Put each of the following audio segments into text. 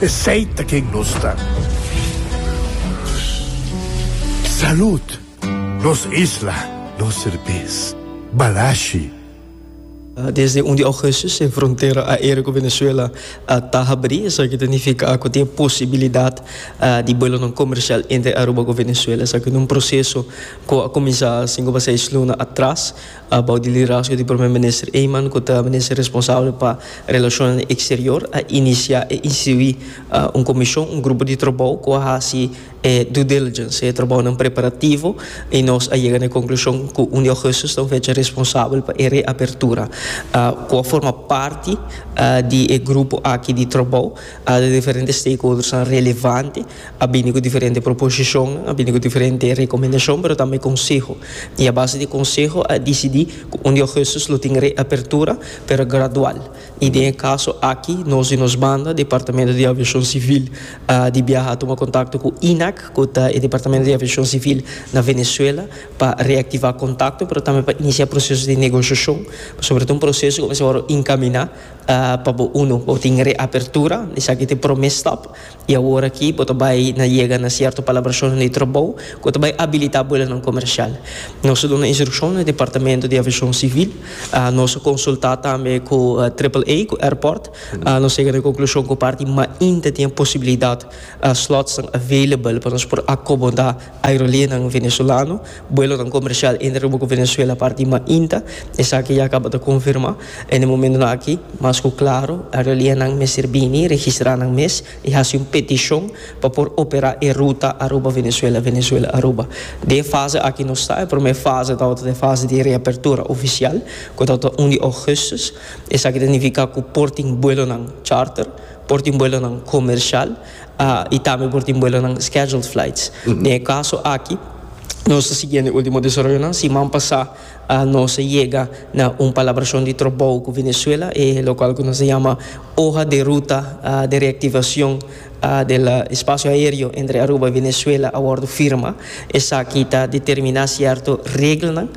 Esey ta ken nos ta. Salud! Nos isla, nos serbes. Balashi. Desde un di Augustus e frontera aereo cu Venezuela ta habri, esaki ta nifica cu tin e posibilidad di buelonan comercial entre Aruba cu Venezuela. Esaki ta un proceso cu a cuminsa sin cu pasá dies luna atras. Bou di liderazgo di Prome Minister Eman, cu ta Minister responsabel pa Relacionnan Exterior, a inicia e institui un comision, un grupo di trabou cu a haci e due diligence, e trabounan preparativo, y nos a yega na e conclusion cu un di Augustus ta un fecha responsabel pa e reapertura. Cu a forma parti di e grupo aki di trabou, di diferente stakeholdersnan relevante, A bini ku diferente proposishon, a bini ku diferente rekomendashon pero tambe konseho i a base di konseho a disidí ku un di ougùstus lo tin reapertura pero gradual i den e kaso aki nos di nos banda Departamento di Aviashon Sivil di biaha a tuma kontakto ku INAC ku ta e Departamento di Aviashon Sivil na Venezuela pa reaktivá kontakto pero tambe pa inisiá proseso di negoshashon pasobra ta un proseso ku mester wòrdu inkaminá pa bo uno bo tin reapertura esaki ta e promé stòp. I awor aki bo ta bai na yega na sierto palabracionnan di trobou cu ta bai abilita buelonan comercial. Nos a duna instruccion na Departamento di Aviacion Civil. Nos a consulta tambe cu Triple-A, cu airport. Nos a yega na e conclusion cu parti mainta tin e posibilidad, slotsnan available pa nos por acomoda. Aerolinenan Venezolano, buelonan comercial entre Aruba cu Venezuela parti di mainta, esaki ya caba ta confirma. En e momentonan aki, mas cu claro, aerolinenan mester bini, registra nan mes y haci un peticion pa por opera e ruta Aruba-Venezuela, Venezuela-Aruba. Den e fase aki nos ta, e prome fase tabata ta e fase di reapertura oficial, cu tabata un di augustus. Esaki ta nifica cu por tin buelonan charter, por tin buelonan comercial. I tambe por tin buelonan scheduled flights. Den e kaso aki nos ta siguiendo e ultimo desaroyonan. Siman pasá nos a yega na un palabrashon di trabou ku Venezuela, e lokual ku nos a yama Hoja de Ruta de Reactivacion del Espacio Aéreo entre Aruba i Venezuela a wòrdu firma. Esaki ta determiná sierto reglanan,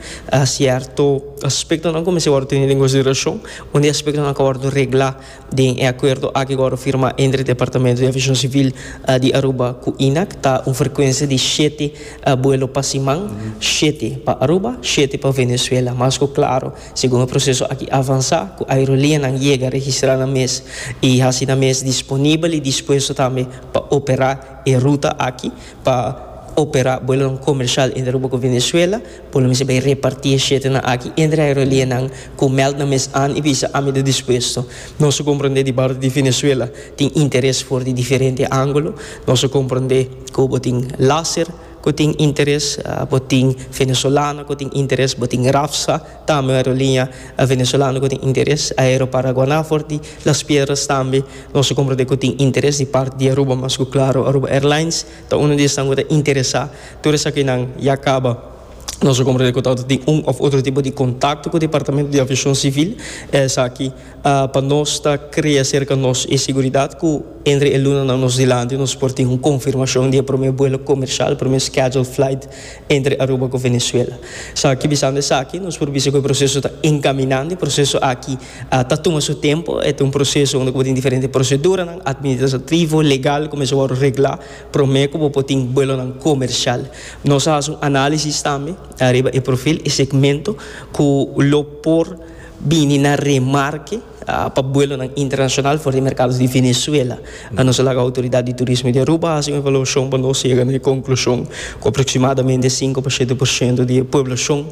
sierto aspektonan ku mester wòrdu tenido en konsiderashon, un di e aspektonan ta wòrdu reglá. Den e akuerdo aki ku wòrdu firmá entre Departamentu di Aviashon Sivil di Aruba ku INAC ta un frekuensia di shete buelo pa siman, shete pa Aruba, shete pa Venezuela. Mas ku klaru, segun e proseso aki avansá, ku aerolianan yega registrá nan mes i hasi nan mes disponibel i dispuesto tambe pa operá e ruta aki, pa operá buelonan komershal entre Aruba ku Venezuela, Bo lo mester bay reparti e shirtnan aki entre aerolineanan cu meld nan mes an y bisa ami ta dispuesto. Nos a comprende di parti di Venezuela tin interes for di diferente angulo. Nos a comprende cu bo tin Laser cu tin interes, bo tin Venezolana cu tin interes, bo tin Rafsa, tambe un aerolinea Venezolano cu tin interes, Aeroparaguana for di Las Piedras tambe nos a comprende cu tin interes di parti di Aruba mas cu claro Aruba Airlines. Ta uno di esnan ku ta interesá. Tur esakinan ya kaba. Nos a komprendé ku ta wòrdu tin un òf otro tipo di kontakto ku Departamento di Aviashon Sivil. E esaki pa nos ta krea serka nos e siguridat ku entre e lunanan nos dilanti nos por tin un konfirmashon di e promé buelo komershal, promé scheduled flight entre Aruba ku Venezuela. Sa, kibisando esaki nos por bisa ku e proseso ta enkaminando. E proseso aki. A ta tuma su tempu, e ta un proseso unda ku bo tin diferente proseduranan administrativo, legal, ku mester wòrdu reglá promé ku bo por tin buelonan komersial. Nos a hasi un análisis tambe ariba e profil, e segmento ku lo por bini na remarke pa buelonan internashonal for di e merkado di Venezuela. Nos a laga outoridat di turismo di Aruba hasi un evaluashon pa nos yega na e konklushon ku aproksimadamente sinku pa shete por shento di e pueblashon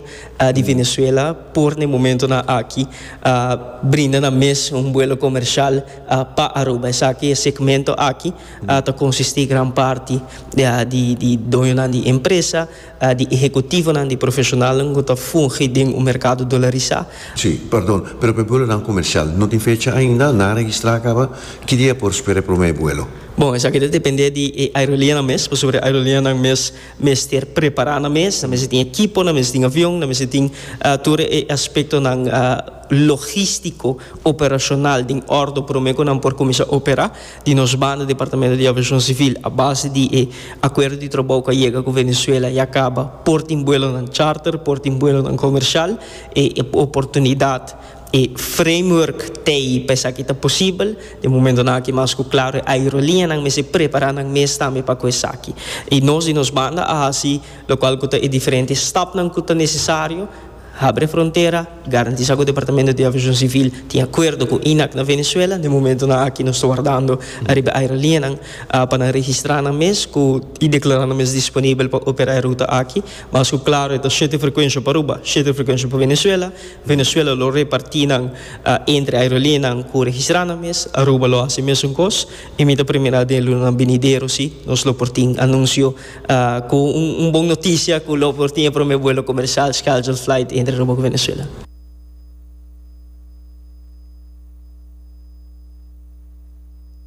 di Venezuela por na e momentonan aki a brinda nan mes un buelo comercial pa Aruba. Esaki e segmento aki ta consistí gran parti di di doñonan di empresa, di ehecutivonan, di profesionalnan cu ta fungi den un mercado dolarisá. Sí, perdon, pero pa e buelonan comercial no tin fecha ainda, nan a registrá a caba, ki dia por spera e prome buelo? Bon, esaki ta dependé di e aerolianan mes, pasobra e aerolianan mes. mester prepará nan mes, nan mester tin ekipo, nan mester tin avion, nan mester tin tur e aspektonan logístiko, operashonal den òrdu promé ku nan por kuminsá operá. Di nos banda Departamento di Aviashon Sivil a base di e akuerdo di trabou ku a yega ku Venezuela ya kaba por tin buelonan charter, por tin buelonan komershal e oportunidat. E framework tei pa esaki ta posibel. Den momentonan aki mas ku klaro e aerolineanan mester prepará nan mes tambe pa ku esaki. I nos di nos banda a hasi lokual ku ta e diferente stapnan ku ta nesesario, habri e frontera, garantisá ku Departamento di Aviashon Sivil tin akuerdo ku INAC na Venezuela. Den momentonan aki nos ta wardando ariba e aerolineanan pa nan registrá nan mes ku i deklará nan mes disponibel pa operá e ruta aki. Mas ku klaro e ta shete frekuensha Aruba, shete frekuensha pa Venezuela. Venezuela lo reparti nan entre aerolineanan ku registrá nan mes. Aruba lo hasi e mesun kos i mi ta primera den lunanan binidero si nos lo por tin anunsio ku un bon notisia ku lo por tin e promé buelo komersial, scheduled flight, entre Aruba ku Venezuela.